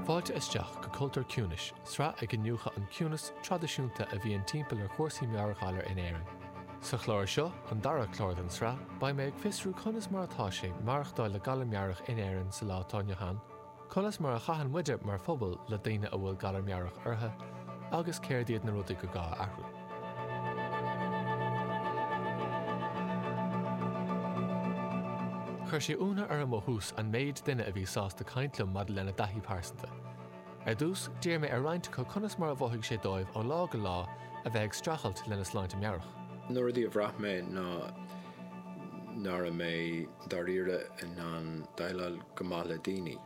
Fáilte isteach go Cultúr an Chiúnais, sraith ag iniúchadh an ciúnas traidisiúnta a bhíonn timpeall ar chúrsaí meabhairghalair in Éirinn. Sa chlár seo, an dara clár den sraith, beidh mé ag fiosrú conas mar atá sé maireachtáil le galar meabhrach in Éirinn sa lá atá inniu ann, conas mar a chaitheann muide mar phobal le daoine a bhfuil galar meabhrach orthu, agus céard iad na rudaí gur gá a athrú. Chuir sé ionadh orm ó thús an méid daoine a bhí sásta caint liom maidir lena dtaithí pearsanta. Ar dtús, d'iarr mé ar roinnt acu conas mar a mhothaigh sé dóibh ó lá go lá a bheith ag streachailt lena sláinte meabhrach. Na rudaí a bhraith mé ná nach raibh mé dáiríre in ann déileáil go maith le daoine.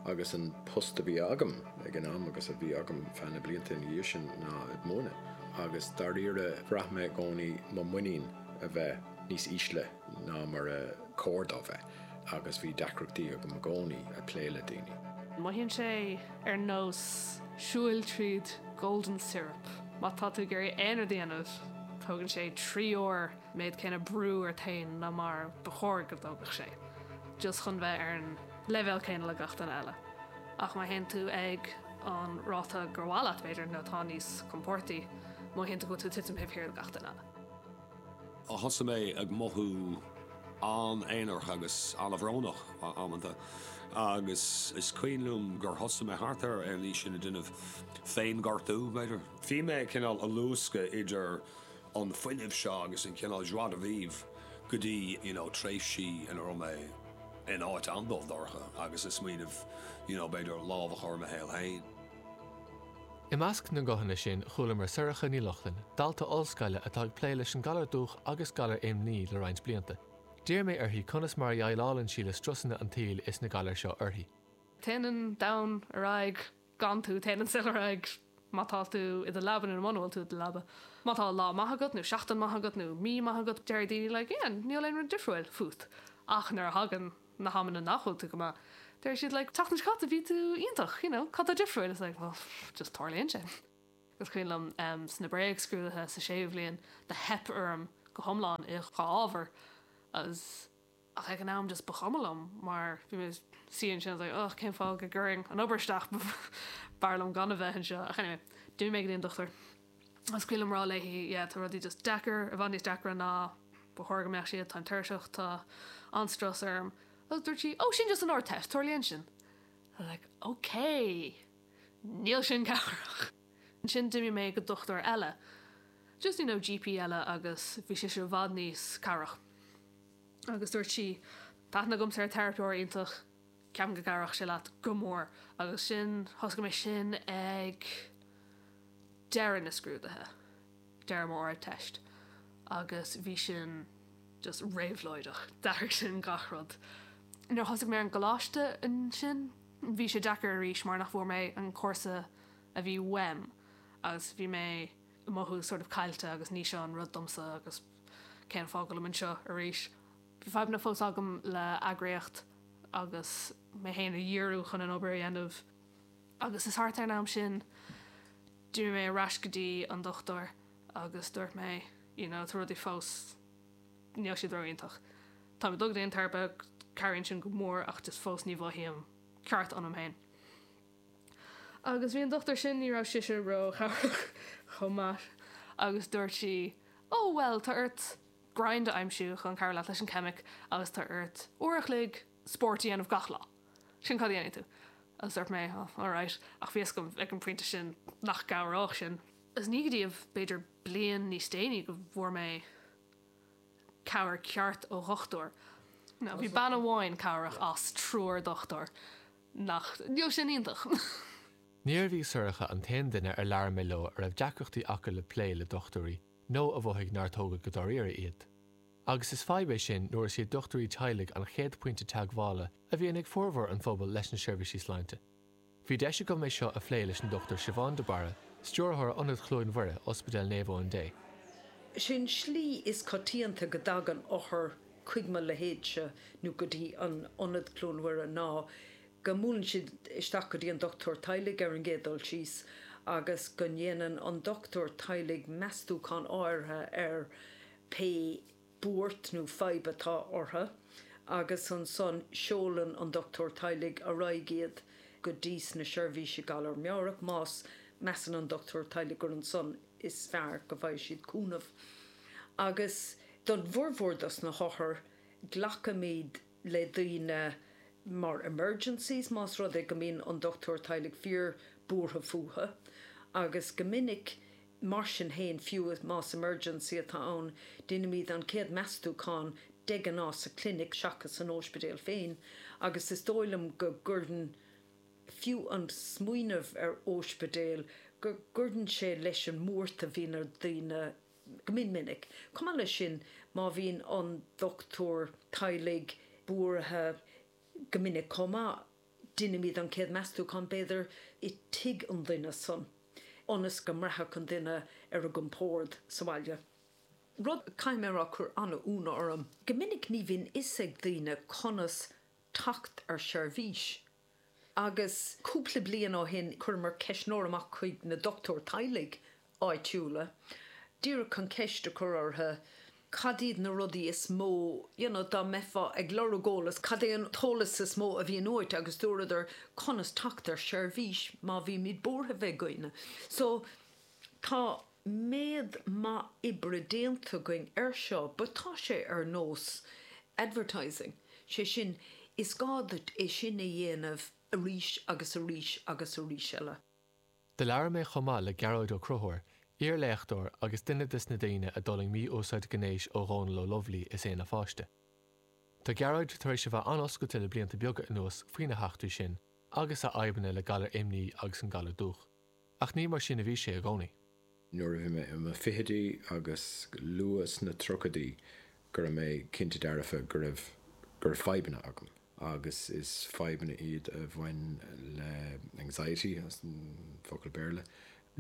agus an post a bhí agam ag an am agus a bhí agam feadh na blianta ina dhiaidh sin ná ag múineadh agus dáiríre bhraith mé i gcónaí mo mhuinín a bheith níos ísle ná mar ba chóir dó bheith agus bhí deacrachtaí agam i gcónaí ag plé le daoine. Mothaíonn sé ar nós siúil tríd Golden Syrup. Má tá tú ag iarraidh aon rud a dhéanamh, tógann sé trí uair an méid céanna brú ort féin ná mar ba chóir go dtógfadh sé, just chun bheith ar an. leibhéal céanna le gach duine eile. Ach má théann tú ag an ráta gur mhaith leat, b'fhéidir, nó atá níos compordaí, má théann tú, go bhfuil tú ag titim taobh thiar de gach duine eile. Thosaigh mé ag mothú an-aonarach agus an-bhrónach amanta, agus is cuimhin liom gur thosaigh mé, thart ar an aois sin, ag déanamh féin-ghortú, b'fhéidir. Bhí mé cineál ag luascadh idir an fuinneamh seo agus an cineál joie de vivre go dtí you know tréimhsí ina raibh mé in áit an-dubh dorcha agus ag smaoineamh you know b'fhéidir lámh a chur i mo shaol féin. I measc na nguthanna sin chualamar Sorcha Ní Lochlainn, dalta ollscoile atá ag plé leis an galar dúch agus galar imní le roinnt blianta. D'iarr mé uirthi conas mar a dheighleálann sí le strusanna an tsaoil is na galair seo uirthi. Téann an domhan ar aghaidh gan tú, téann an saol ar aghaidh má tá tú i do leaba nó muna bhfuil tú i do leaba. Má tá lá maith agat nó seachtain maith agat nó mí maith agat deir daoine like yeah níl aon rud difriúil fút ach nuair a thagann na hamanna nach bhfuil tú go maith deir siad like an tseachtain seo caite bhí tú iontach you know cad tá difriúil it's like well just tarlaíonn sé. Is cuimhin liom em sna bréagscrúduithe sa séú bhliain do theip orm go hiomlán i dhá ábhar agus. ach ag an am just ba chuma liom mar bhí mé i mo shuí ansin I was like ugh cén fáth go gcuirfinn an obair isteach b'fhearr liom gan a bheith anseo ach anyway d'imigh mé go dtí an dochtúir agus bhí mé ag rá léi yeah tá rudaí just deacair, i bhfad níos deacra ná ba chóir go mbeadh siad, táim tuirseach, tá an-strus orm agus dúirt sí oh sin just an Ardteist, tarlaíonn sin I was like ok níl sin cabhrach! ansin d'imigh mé go dochtúir eile just you know GP eile agus bhí sise i bhfad níos cabhrach. agus dúirt sí, Tá aithne agamsa ar teiripeoir iontach ceapaim go gcabhródh sé leat go mór agus sin, thosaigh mé sin ag deireadh na scrúduithe, deireadh mo Ard Teist agus bhí sin just réabhlóideach, d'athraigh sin gach rud. Nuair a thosaigh mé ar an gcoláiste ansin, bhí sé deacair arís mar nach bhfuair mé an cúrsa a bhí uaim agus bhí mé ag mothú sort of caillte agus ní seo an rud domsa agus Cén fáth go bhfuil mé anseo arís? Bhí fadhbanna fós agam le eagraíocht agus mé féin a dhíriú chun an obair a dhéanamh agus is thart ar an am sin d'imigh mé ar ais go dtí an dochtúir agus dúirt mé you know tá rudaí fós níl siad ró-iontach. Táim ag dul go dtí an teiripe, cabhraíonn sin go mór ach just fós ní mhothaím ceart ionam féin. Agus bhí an dochtúir sin, ní raibh sise ró-chabhrach chomh maith. Agus dúirt sí, Ó, bhuel, tá ort grinds a aimsiú chun cabhrú leat leis an ceimic agus tá ort uair a chloig spórt a dhéanamh gach lá. Sin cad a dhéanfaidh tú. Agus dúirt mé, Ó, alright. Ach bhí 'fhios agam ag an bpointe sin nach gcabhródh sin. Agus ní go dtí b'fhéidir bliain níos déanaí go bhfuair mé cabhair ceart ó dhochtúir. Nó bhí bean amháin cabhrach as triúr dochtúir. Nach ndeachaigh sin iontach? Níorbh í Sorcha an t-aon duine ar labhair mé leo a raibh deacrachtaí acu le plé le dochtúirí nó a mhothaigh nár tógadh go dáiríre iad. Agus is fadhb é sin nuair is iad dochtúirí teaghlaigh an chéad phointe teagmhála a bhíonn ag formhór an phobail leis na seirbhísí sláinte. Bhí deis agam é seo a phlé leis an Dochtúir Siobhán de Barra, Stiúrthóir Ionad Chluain Mhuire, Ospidéal Naomh Eoin Dé. An slí is coitianta go dtagann othair chuig mo leithéidse nó go dtí an Ionad Chluain Mhuire ná go mbuaileann siad isteach go dtí an dochtúir teaghlaigh ar an gcéad dul síos agus go ndéanann an dochtúir teaghlaigh meastúchán áirithe ar pé buairt nó fadhb atá orthu agus ansan seolann an dochtúir teaghlaigh ar aghaidh iad go dtís na seirbhísí galar meabhrach má mheasann an dochtúir teaghlaigh gur ansan is fearr go bhfaighidh siad cúnamh agus don bhformhór dos na hothair glacaimid le daoine mar emergencies más rud é go mbíonn an dochtúir teaghlaigh fíor buartha fúthu agus go minic mar sin féin fiú más emergency atá ann deinimid an chéad meastúchán de ghnáth sa chlinic seachas san ospidéal féin agus is dóigh liom go gcuireann fiú an smaoineamh ar óispidéal, go gcuireann sé leis an mbuairt a bhíonn ar dhaoine go mion minic. Chomh maith leis sin, má bhíonn an dochtúir teaghlaigh buartha go minic chomh maith, deinimid an chéad meastúchán, b'fhéidir, i dtigh an duine san, ionas go mbraithfeadh an duine ar a gcompórd sa bhaile. Rud a chaithfidh mé a rá, chuir an-ionadh orm, go minic ní bhíonn fhios ag daoine conas teacht ar sheirbhís agus cúpla bliain ó shin chuireamar ceistneoir amach chuig na dochtúirí teaghlaigh áitiúla díreach chun ceist a chur orthu cad iad na rudaí is mó you know dá mbeifeá ag lorg eolas cad é an t-eolas is mó a bhíonn uait agus dúradar conas teacht ar sheirbhís má bhímid buartha faoi dhaoine so tá méid maith oibre déanta againn air seo but tá sé ar nós advertising, sé sin, is gá duit é sin a dhéanamh arís agus arís agus arís eile. Do labhair mé chomh maith le Gearóid Ó Conchubhair, iar-léachtóir agus duine des na daoine a d'fhulaing mí-úsáid gnéis ó Dhónal Ó Lubhlaí is é ina pháiste. Tá Gearóid tar éis a bheith an-oscailte le blianta beaga anuas faoina heachtraí sin agus a fhadhbanna le galar imní agus an galar dúch. Ach ní mar sin a bhí sé i gcónaí. Nuair a bhí mé i mo fhichidí agus go luath sna tríochaidí go raibh mé cinnte dearfa go raibh go raibh fadhbanna agam, agus is fadhbanna iad a bhain le anxiety, as an bhfocal Béarla.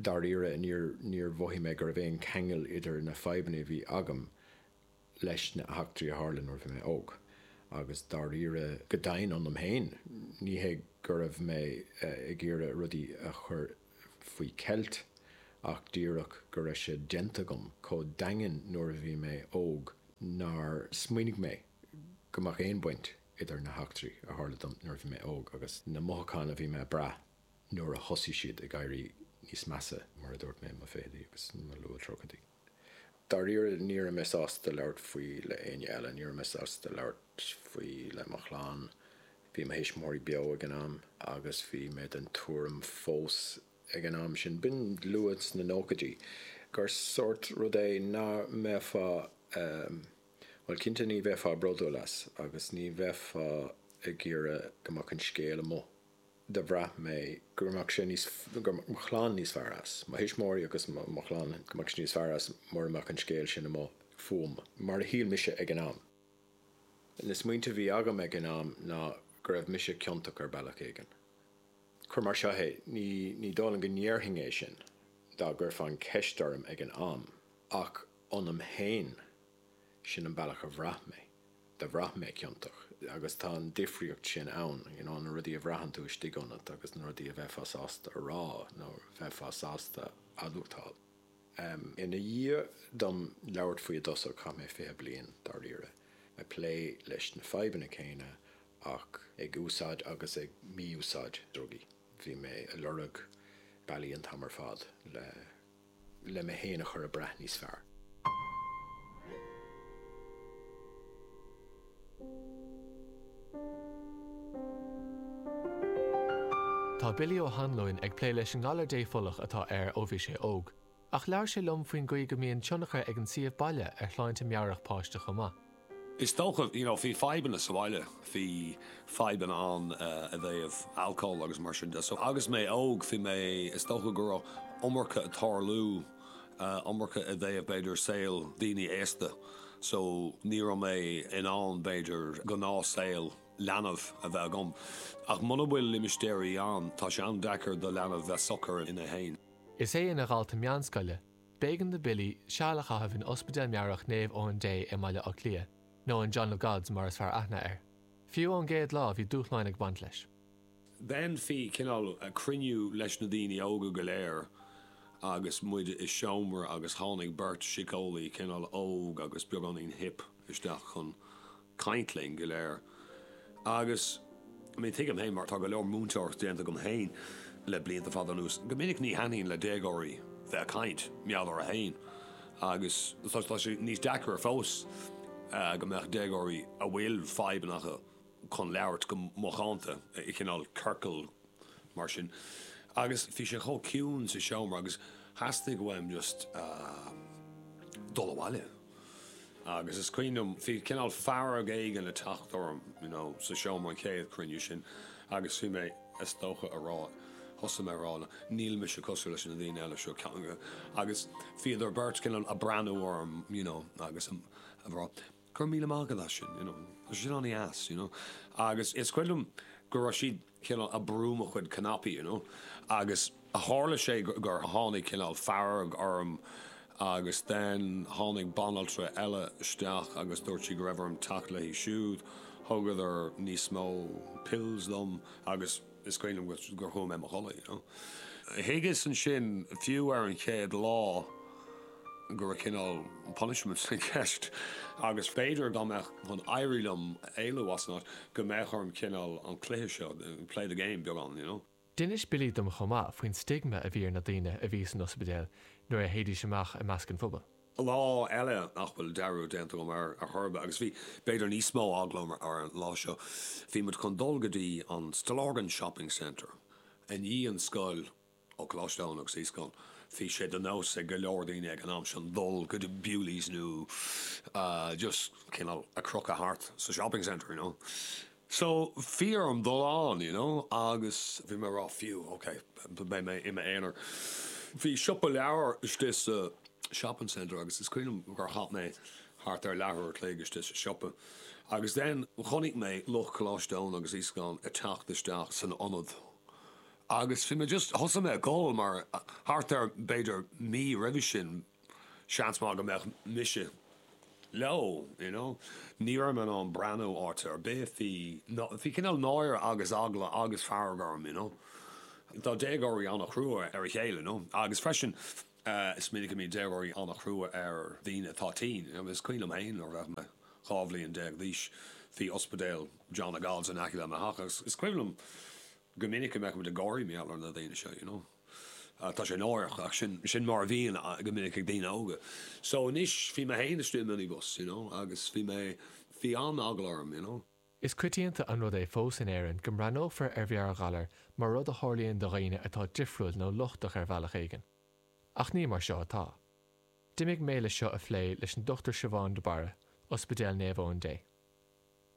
Dáiríre níor mhothaigh mé go raibh aon cheangal idir na fadhbanna a bhí agam leis na heachtraí a tharla nuair a bhí mé óg, agus dáiríre, go domhain ionam féin, ní hé go raibh mé ag iarraidh rudaí a chur faoi cheilt, ach díreach go raibh sé déanta agam chomh daingean nuair a bhí mé óg nár smaoinigh mé go mbeadh aon bhaint idir na heachtraí a tharla dom nuair a bhí mé óg agus na mothucháin a bhí mé ag brath nuair a thosaigh siad ag éirí níos measa, mar a dúirt mé, i mo fhichidí agus i mo luath-tríochaidí. Dáiríre, ní raibh mé sásta labhairt faoi le éinne eile, ní raibh mé sásta labhairt faoi le mo chlann. Bhí mo thuismitheoirí beo ag an am agus bhí mé den tuairim fós ag an am sin, b'in luath sna nóchaidí, gur sórt rud é nach mbeifeá, bhuel, cinnte ní bheifeá bródúil as agus ní bheifeá ag iarraidh go mbeadh an scéal amuigh. do bhraith mé go raibh mo chlann níos fearr, go raibh mo chlann níos fearr as, mo thuismitheoirí agus mo chlann, go mbeadh siad níos fearr as mura mbeadh an scéal sin amuigh fúm, mar a shíl mise ag an am. Na smaointe a bhí agam ag an am ná go raibh mise ciontach ar bhealach éigin. Cuir mar seo é, ní, ní dóigh liom go ndéarfainn é sin, dá gcuirfeá an cheist orm ag an am, ach ionam féin, sin an bealach a bhraith mé. do bhraith mé ciontach agus tá an difríocht sin ann, you know, na rudaí a bhraitheann tú istigh ionat agus na rudaí a bheifeá sásta a rá nó bheifeá sásta admhachtáil. Em, ina dhiaidh dom labhairt faoi i dtosach, chaith mé fiche bliain, dáiríre, ag plé leis na fadhbanna céanna ach ag úsáid agus ag mí-úsáid drugaí. Bhí mé a' lorg bealaí an t-am ar fad le le mé féin a chur ag brath níos fearr. Tá Billy Ó hAnluain ag plé leis an ngalar dépholach atá air ó bhí sé óg. Ach labhair sé liom faoin gcaoi go mbíonn tionchar ag an suíomh baile ar shláinte meabhrach páiste chomh maith. Is dócha, you know, bhí fadhbanna sa bhaile, bhí fadhbanna ann i dtaobh alcóil agus mar sin de, so agus mé óg, bhí mé, is dócha go raibh iomarca ag tarlú, iomarca i dtaobh b'fhéidir saol daoine aosta, so ní raibh mé in ann b'fhéidir gnáth saol leanbh a bheith agam, ach muna bhfuil limistéirí ann, tá sé an-deacair do leanbh bheith socair ann féin. Is é ina dhalta meánscoile B'éigean do Billy seal a chaitheamh in Ospidéal Meabhrach Naomh Eoin Dé i mBaile Átha Cliath, nó an 'John of Gods' mar is fearr aithne air. Fiú ón gcéad lá bhí dúshláin ag baint leis. Dhéanfaí cineál cruinniú leis na daoine óga go léir agus muid i seomra agus tháinig beirt síceolaí, cineál óg agus beagáinín hip. isteach chun caint linn go léir. Agus, I mean, tuigim féin, mar tá go leor múinteoireachta déanta agam féin le blianta fada anuas, go minic ní thaitníonn le déagóirí bheith ag caint, mar gheall orthu féin. Agus tá, tá sé níos deacaire fós go mbeadh déagóirí a bhfuil fadhbanna acu chun labhairt go macánta, i cineál ciorcal mar sin, agus bhí sé chomh ciúin sa seomra agus theastaigh uaim just dul abhaile agus is cuimhin liom, bhí cineál fearg éigin ag teacht orm you know sa seomra an chéad chruinniú sin agus bhí mé is dócha a rá, thosaigh mé a rá níl mise cosúil leis na daoine eile seo agus bhíodar beirt cineál a' breathnú orm you know agus a rá. Go raibh míle maith agat as sin, you know, tá sé sin an-deas, you know, agus is cuimhin liom go raibh siad cineál a' brú mo chuid cnaipí, you know, agus tharla sé gur tháinig cineál fearg orm agus then tháinig banaltra eile isteach agus dúirt sí go raibh orm teacht léi siúd, thugadar níos mó pills dom agus. is cuimhin liom gur chuaigh mé i mo chodladh, you know. Thuigeas ansin, fiú ar an chéad lá, go raibh cineál punishment i gceist agus b'fhéidir dá mbeinn chun éirí liom éalú as an áit, go mbeadh orm cineál an cluiche seo, play the game beagán, you know. D'inis Billy dom chomh maith faoin stigma a bhí ar na daoine a bhí san ospidéal nuair a théidís amach i measc an phobail. lá eile nach bhfuil dearúd déanta agam ar chor ar bith, agus bhí, b'fhéidir, níos mó eagla orm ar an lá seo, bhí muid chun dul go dtí an Stillorgan Shopping Centre i ndiaidh an scoil ó Choláiste Eoin agus Íosagáin. Bhí sé de nós ag go leor daoine ag an am sin dul go dtí Bewley's nó just, you know, a chrochadh thart sa shopping centre, you know. So, faoi mo dhúshlán, you know, agus bhí mé a' rá, fiú, ok, beidh mé i m'aonar. Bhí siopa leabhar istigh sa shopping centre agus is cuimhin liom gur chaith mé thart ar leathuair a' chloig istigh sa siopa agus then chonaic mé lucht Choláiste Eoin agus Íosagáin a' teacht isteach san ionad agus bhí mé just, thosaigh mé ag gol mar thart ar b'fhéidir mí roimhe sin, seans maith go mbeadh mise leo, you know. Ní raibh mé in ann breathnú orthu ar chor ar bith, bhí, bhí cineál náire agus eagla agus fearg orm, you know. Tá déagóirí an-chrua ar a chéile, you know, agus freisin is minic a mbíonn déagóirí an-chrua ar dhaoine atá tinn, you know. Is cuimhin liom féin nuair a bhí mé dhá bhliain déag d'aois, bhí ospidéal John of God's in aice le mo theach agus is cuimhin liom go minic go mbeadh muid ag gáire mar gheall ar na daoine seo, you know. Tá sé náireach ach sin mar a bhíonn go minic ag daoine óga. So anois bhí mé féin istigh i minibus you know agus bhí mé, bhí an-eagla orm you know. Is coitianta an rud é fós in Éirinn go mbreathnófar ar mheabhairghalar mar rud a tharlaíonn do dhaoine atá difriúil nó lochtach ar bhealach éigin. Ach ní mar seo atá. D'imigh mé le seo a phlé leis an Dochtúir Siobhán de Barra, Ospidéal Naomh Eoin Dé.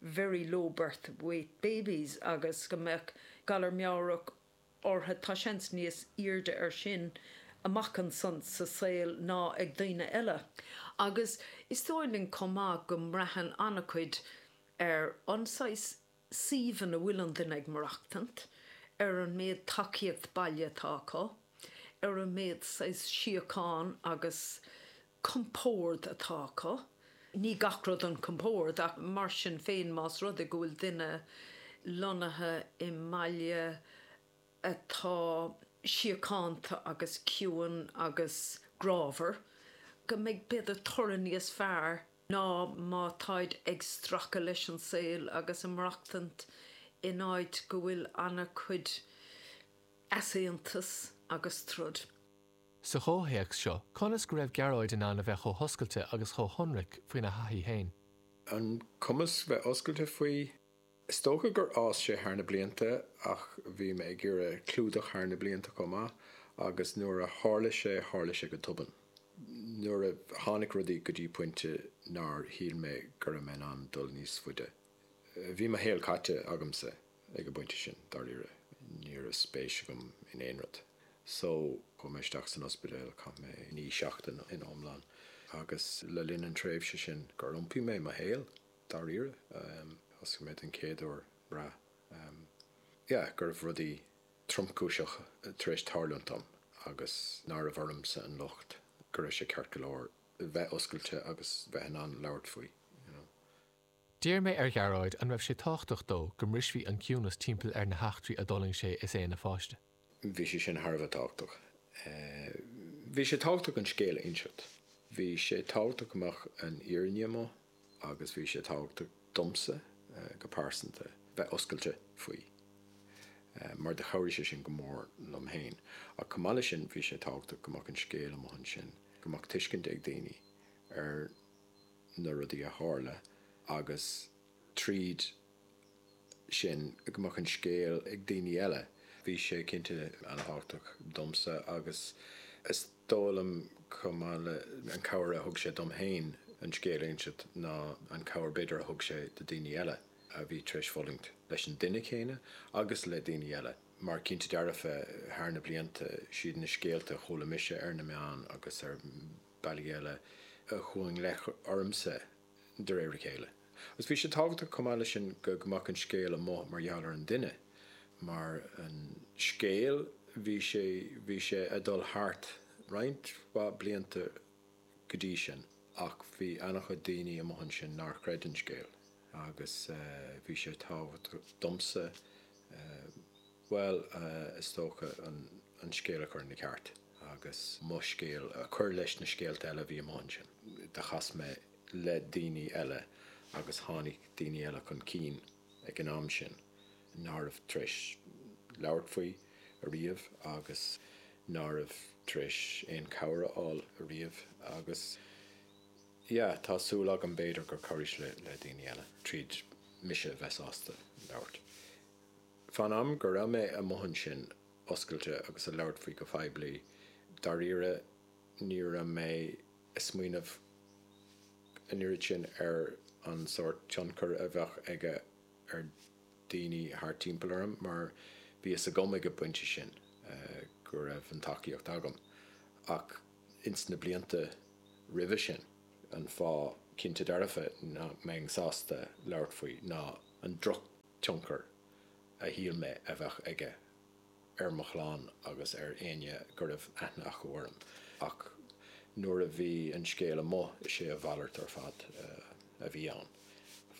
very low birth weight babies agus go mbeadh galar meabhrach ortha, tá seans níos aoirde ar sin amach ansan sa saol ná ag daoine eile. Agus is dóigh linn chomh maith go mbraitheann an-chuid ar an saghas suímh ina bhfuil an duine ag maireachtaint, ar an méid tacaíocht baile atá acu, ar an méid saghas síocháin agus compord atá acu. Ní gach rud an compord ach mar sin féin más rud é go bhfuil duine lonnaithe i mbaile atá síochánta agus ciúin agus grámhar go mbeidh b'fhéidir toradh níos fearr ná má táid ag stracadh leis an saol agus ag maireachtaint in áit go bhfuil an-chuid easaontas agus troid. sa chomhthéacs seo, conas go raibh Gearóid in ann a bheith chomh hoscailte agus chomh hionraic faoina thaithí féin. An cumas a bheith oscailte faoi. Is dócha gur fhás sé thar na blianta ach bhí mé ag iarraidh clúdach thar na blianta chomh maith agus nuair a tharla sé, tharla sé go tobann. Nuair a tháinig rudaí go dtí pointe nár shíl mé go raibh mé in ann dul níos faide. Bhí mo shaol caite agamsa ag an bpointe sin, dáiríre. Ní raibh spéis agam in aon rud. Só, chuaigh mé isteach san ospidéal, chaith mé naoi seachtaine in iomlán, agus le linn an tréimhse sin gur iompaigh mé mo shaol, dáiríre. Thosaigh mé den chéad uair ag brath, yeah, go raibh rudaí tromchúiseacha tar éis tarlúint dom agus nárbh ormsa an locht, go raibh sé ceart go leor bheith oscailte agus bheith in ann labhairt faoi, you know. D'iarr mé ar Ghearóid an raibh sé tábhachtach dó go mbrisfí an ciúnas timpeall ar na heachtraí a d'fhulaing sé is é ina pháiste. Bhí sé sin thar a bheith tábhachtach. Bhí sé tábhachtach an scéal a inseacht. Bhí sé tábhachtach go mbeadh an fhírinne amuigh agus bhí sé tábhachtach domsa go pearsanta bheith oscailte faoi mar do chabhraigh sé sin go mór liom féin. Ach chomh maith leis sin, bhí sé tábhachtach go mbeadh an scéal amuigh ansin, go mbeadh tuiscint ag daoine ar. na rudaí a tharla agus tríd sin go mbeadh an scéal ag daoine eile. Bhí sé cinnte an-tábhachtach domsa agus is dóigh liom chomh maith le an cabhair a thug sé dom féin an scéal a inseacht ná an cabhair b'fhéidir a thug sé do daoine eile a bhí tar éis fulaingt leis an duine céanna agus le daoine eile mar cinnte dearfa thar na blianta is iad na scéalta a chuala mise ar na meáin agus ar bealaí eile a chuaigh i bhfeidhm ormsa de réir a chéile. Agus bhí sé tábhachtach chomh maith leis sin go mbeadh an scéal amuigh mar gheall ar an duine, mar an scéal bhí sé bhí sé ag dul thart roinnt mhaith blianta go dtí sin ach bhí an-chuid daoine amuigh ansin nár chreid an scéal agus bhí sé tábhachtach domsa bhuel, is dócha an scéal a chur ina cheart agus mo scéal a chur leis na scéalta eile a bhí amuigh ansin. Do chas mé le daoine eile agus tháinig daoine eile chun cinn ag an am sin nach raibh tar éis labhairt faoi ariamh agus nach raibh tar éis aon chabhair a fháil ariamh agus, yeah, tá súil agam b'fhéidir gur chabhraigh sé le daoine eile tríd mise a bheith sásta labhairt. Fán am go raibh mé amuigh ansin oscailte agus ag labhairt faoi go phoiblí, dáiríre, ní raibh mé ag smaoineamh an oiread sin ar an sórt tionchar a bheadh aige ar dhaoine thart timpeall orm mar bhí a fhios agam ag an bpointe sin go raibh an tacaíocht agam. Ach ins na blianta roimhe sin, an fáth cinnte dearfa nach mbeinn sásta labhairt faoi ná an drochthionchar tionchar a shíl mé a bheadh aige ar mo chlann agus ar éinne go raibh aithne acu orm, ach nuair a bhí an scéal amuigh, is é a mhalairt ar fad a bhí ann.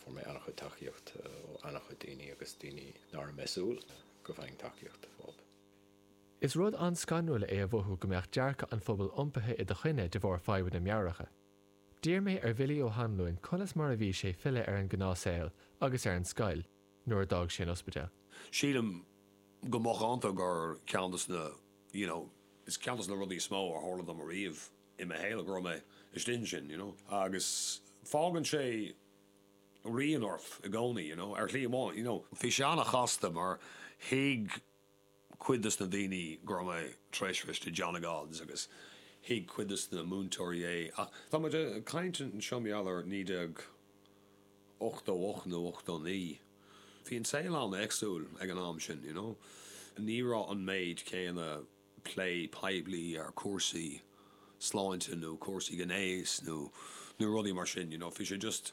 Fuair mé an-chuid tacaíocht ó an-chuid daoine agus daoine nach raibh mé ag súil go bhfaighinn tacaíocht uathu. Is rud an-scanrúil é a mhothú go mbeadh dearcadh an phobail iompaithe i do choinne de bharr fadhbanna meabhracha. D'iarr mé ar Bhilly Ó hAnluain conas mar a bhí sé filleadh ar an gnáth saol agus ar an scoil nuair a d'fhág sé an ospidéal. Sílim go macánta gur ceann dos na, you know, is ceann dos na rudaí is mó a tharla dom ariamh i mo shaol go raibh mé istigh ansin, you know. Agus fágann sé rian ort i gcónaí, you know, ar shlí éigin, you know. Bhí sé ana-chasta mar thuig cuid de na daoine go raibh mé tar éis a bheith istigh, i John of God's, agus thuig cuid de na múinteoirí é, ach tá muid ag caint anseo mar gheall ar 1988 nó 89, bhí an saol an-éagsúil ag an am sin, you know, ní raibh an méid céanna plé poiblí ar chúrsaí sláinte nó cúrsaí gnéis nó rudaí mar sin, you know, bhí sé just.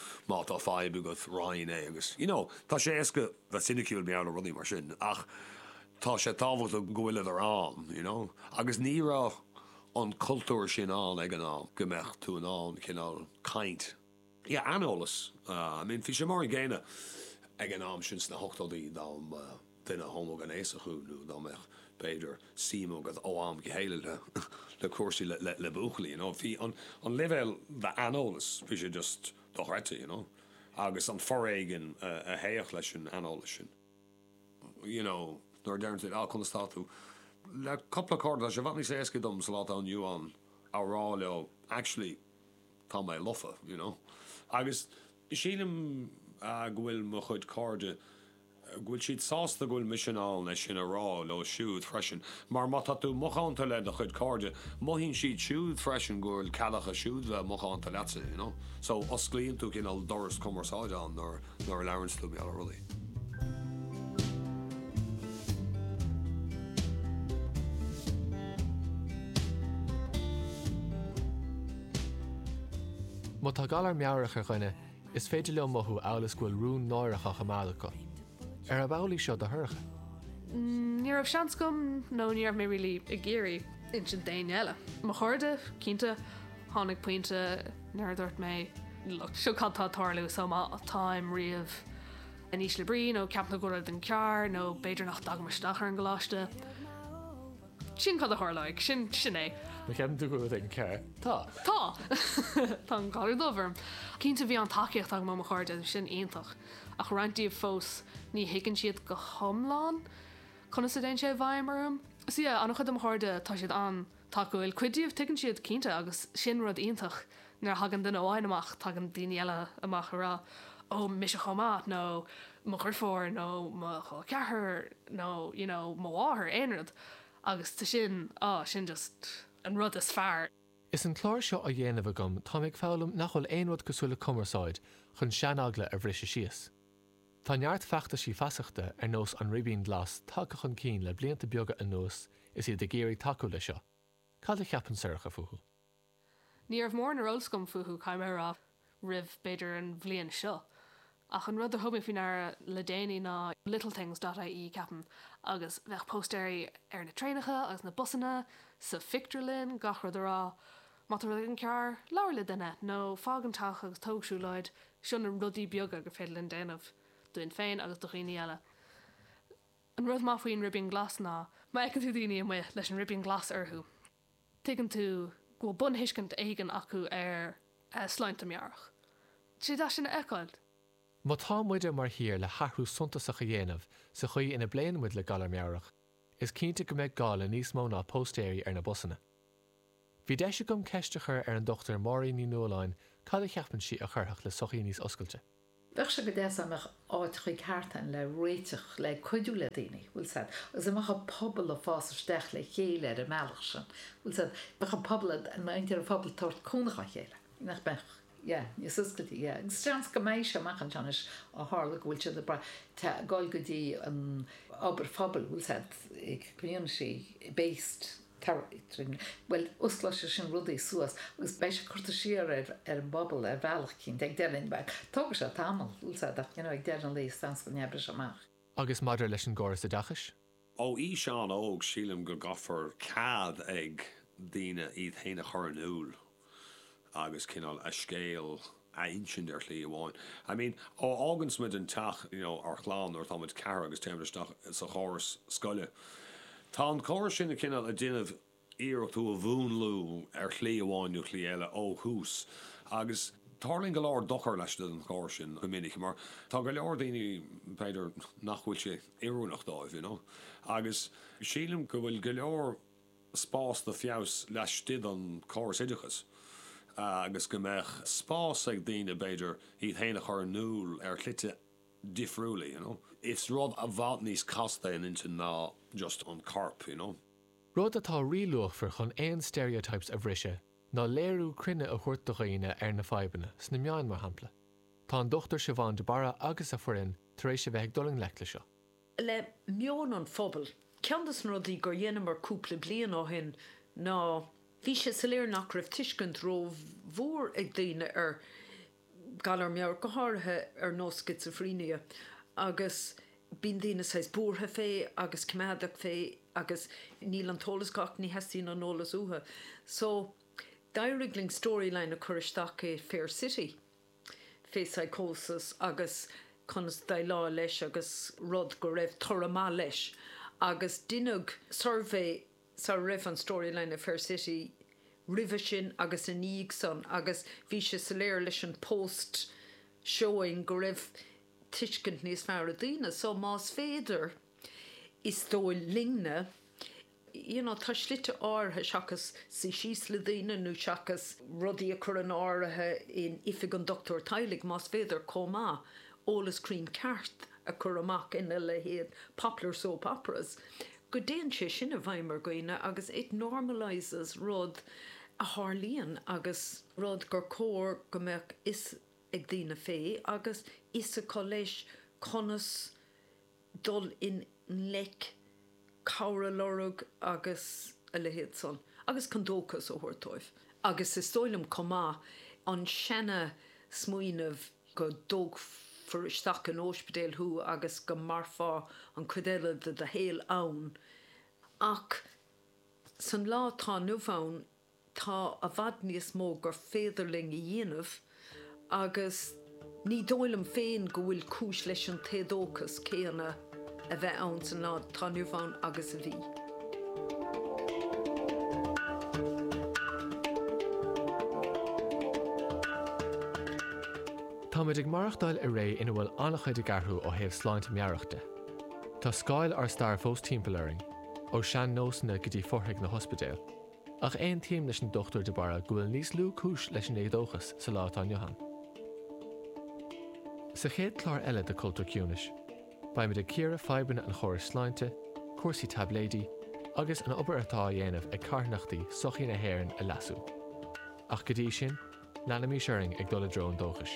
Má tá fadhb agat, roinn é agus, you know, tá sé éasca bheith ciniciúil mar gheall ar rudaí mar sin ach tá sé tábhachtach go bhfuileadar ann, you know. Agus ní raibh an cultúr sin ann ag an am, go mbeadh tú in ann cineál caint. Yeah, aineolas. I mean, bhí sé mar an gcéanna ag an am sin sna hochtóidí dá mba. duine homaighnéasach thú nó dá mbeadh, b'fhéidir, suim agat ó am go chéile i gcúrsaí le buachaillí, you know. Bhí an leibhéal d'aineolas, bhí sé just dochreidte, you know. Agus an foréigean a théadh leis an aineolas sin, you know, nuair a deireann tú, ah, conas tá tú? Le cupla cairde, tá sé i bhfad níos éasca dom sa lá atá inniu ann a rá leo, actually, tá mé lofa, you know. Agus sílim go bhfuil mo chuid cairde go bhfuil siad sásta go bhfuil mise in ann é sin a rá leo siúd freisin, mar má tá tú macánta le do chuid cairde, mothaíonn siad siúd freisin go bhfuil cead acu siúd bheith macánta leatsa, you know. So, osclaíonn tú cineál doras cumarsáide ann nuair, nuair a labhraíonns tú mar gheall ar rudaí. Má tá galar meabhrach ar dhuine, Is féidir leo mothú amhail is go bhfuil rún náireach á choimeád acu. Ar ab amhlaidh seo do Shorcha? Ní raibh seans agam nó ní raibh mé really ag iarraidh insint d'éinne eile. Mo chairde, cinnte. Tháinig pointe nuair a dúirt mé, look, seo cad tá ag tarlú, so má táim riamh in ísle brí nó ceapaim go bhfuil rud éigin cearr nó b'fhéidir nach dtagaim isteach ar an gcoláiste, Sin cad a tharlóidh. Sin, sin é. An ceapann tú go bhfuil an ceart? Tá. Tá. Tá an galar dubh orm. Cinnte bhí an-tacaíocht agam ó mo chairde, bhí sin iontach, ach roinnt díobh fós, ní thuigeann siad go hiomlán conas a dtéann sé i bhfeidhm orm. Sea, an-chuid de mo chairde, tá siad an-tacúil. Cuid díobh, tuigeann siad, cinnte, agus sin rud iontach. Nuair a thagann duine amháin amach tagann daoine eile amach ag rá 'Ó, mise chomh maith' nó 'Mo dhriofúr' nó 'Mo chol ceathrair' nó you know 'Mo mháthair', aon rud. Agus tá sin, á, sin just an rud is fearr. Is an clár seo á dhéanamh agam táim ag foghlaim nach bhfuil aon rud cosúil le cumarsáid chun seaneagla a bhriseadh síos. Tá neart feachtaisí feasachta ar nós An Ribín Glas tagtha chun cinn le blianta beaga anuas is iad ag iarraidh tacú le seo. Cad a cheapann Sorcha fúthu? Ní raibh mórán ar eolas agam fúthu, caithfidh mé a rá, roimh, b'fhéidir, an bhliain seo, ach an rud a thug mé faoi ndeara le déanaí ná littlethings dot ie, ceapaim, agus bheadh póstaeirí ar na traenacha agus na busanna, sa phictiúrlann, gach rud a rá, má tá rud éigin cearr, labhair le duine, nó fág an teach agus tóg siúlóid, seo na rudaí beaga gur féidir linn déanamh, dúinn féin agus do dhaoine eile. An rud maith faoin ribín glas ná, má fheiceann tú daoine amuigh leis an ribín glas orthu, tuigeann tú go bhfuil bunthuiscint éigin acu ar shláinte meabhrach. Is deas é sin a fheiceáil. Má tá muide mar thír le hathrú suntasach a dhéanamh sa chaoi ina bpléann muid le galar meabhrach, is cinnte go mbeidh gá le níos mó ná póstaeirí ar na busanna. Bhí deis agam ceist a chur ar an Dr Máirín Ní Nualláin cad a cheapann sí a chuirfeadh le sochaí níos oscailte. Bheadh sé go deas dá mbeadh áit chuí cartlainne le réiteach le cuidiú le daoine, bhfuil a fhios agat, agus dá mbeadh an pobal ag fás isteach le chéile ar an mbealach sin, bhfuil a fhios agat, bheadh an pobal ag, an muintir an phobail ag tabhairt cúnamh dá chéile, nach mbeadh? Yeah, níos oscailte, yeah, agus seans go mbeidh sé amach anseo anois ó tharla go bhfuil siad ag brath, tá, ag dul go dtí an obair phobail, bhfuil a fhios agat, an community based. Bhuel, osclóidh sé sin rudaí suas agus beidh sé ag cur siar ar an bpobal ar bhealach, cinnte, ag deireadh, bhuel, tógfaidh sé tamall, we'll say that, you know, ag deireadh an lae seans go n-oibreoidh sé amach. Agus maidir leis an gcóras oideachais? Ó aois an-óg sílim go gcaithfear cead ag daoine iad féin a chur in iúl. agus cineál a scéal a insint ar shlí amháin. I mean, ó fháganns muid an teach, you know, ár chlann nuair atá muid ceathair agus téann muid isteach sa chóras scoile, tá an córas sin ag cineál ag déanamh iarracht thú a mhúnlú ar shlí amháin nó shlí eile ó thús agus tarlaíonn go leor dochar leis an chóras sin go minic mar tá go leor daoine, b'fhéidir, nach bhfuil sé oiriúnach dóibh, you know, agus sílim go bhfuil go leor. spás do feabhas laistigh den chóras oideachais agus go mbeadh spás ag daoine, b'fhéidir, iad féin a chur in iúl ar shlite difriúla, you know. Is rud i bhfad níos casta é an intinn ná just an corp, you know. Rud atá ríluachmhar chun aon stereotypes a bhriseadh ná léiriú cruinne a thabhairt do dhaoine ar na fadhbanna, sna meáin mar shampla. Tá an Dr Siobhán de Barra agus a foireann tar éis a bheith ag dul i ngleic le seo. le meon an phobail. Ceann de na rudaí gur dheineamar cúpla bliain ó shin ná, bhí sé soiléir nach raibh tuiscint ró-mhór ag daoine ar Galar Meabhrach, go háirithe ar nós Schizophrenia agus bíonn daoine saghas buartha fé agus coimeádach fé agus níl an t-eolas acu ach ní theastaíonn an eolas uathu. So, d'éirigh linn storyline a chur isteach i Fair City. fé psychosis agus conas déileáil leis agus rud go raibh toradh maith leis agus deineadh suirbhé sara raibh an Storyline ar Fair City roimhe sin agus ina dhiaidh san agus bhí sé soiléir leis an post showing go raibh tuiscint níos fearr ag daoine so más féidir is dóigh linne you know tá slite áirithe seachas suí síos le daoine nó seachas rudaí a chur in airde in oifig an doctúir teaghlaigh más féidir chomh maith eolas cruinn ceart a chur amach ina leithéid popular soap operas go dtéann sé sin i bhfeidhm ar dhaoine agus it normalizes rud a tharlaíonn agus rud gur chóir go mbeadh a fhios ag daoine fé agus a fhios acu leis conas dul i ngleic, cabhair a lorg agus a leithéad san agus chun dóchas a thabhairt dóibh agus is dóigh liom chomh maith an seana smaoineamh go dtógfaí isteach in ospidéal thú agus go mairfeá an cuid eile de do shaol ann ach san lá atá inniu ann tá i bhfad níos mó gur féidir linn a dhéanamh agus ní dóigh liom féin go bhfuil cúis leis an t-éadóchas céanna a bheith ann sa lá atá inniu ann agus a bhí. Táimid ag maireachtáil i ré ina bhfuil an-chuid ag athrú ó thaobh sláinte meabhrach de. Tá scáil ár staire fós timpeall orainn, ó sean-nósanna go dtí fothraigh na n-ospidéal. Ach aontaím leis an Dr. de Barra go bhfuil níos lú cúis leis an éadóchas sa lá atá inniu ann. Sa chéad chlár eile de Cultúr Ciúnais, beimid ag cíoradh fadhbanna an chórais sláinte, cúrsaí taibléidí, agus an obair atá á dhéanamh ag carthanachtaí sochaí na hÉireann a leasú. Ach go dtí sin, leanaimis orainn ag dul i dtreo an dóchais.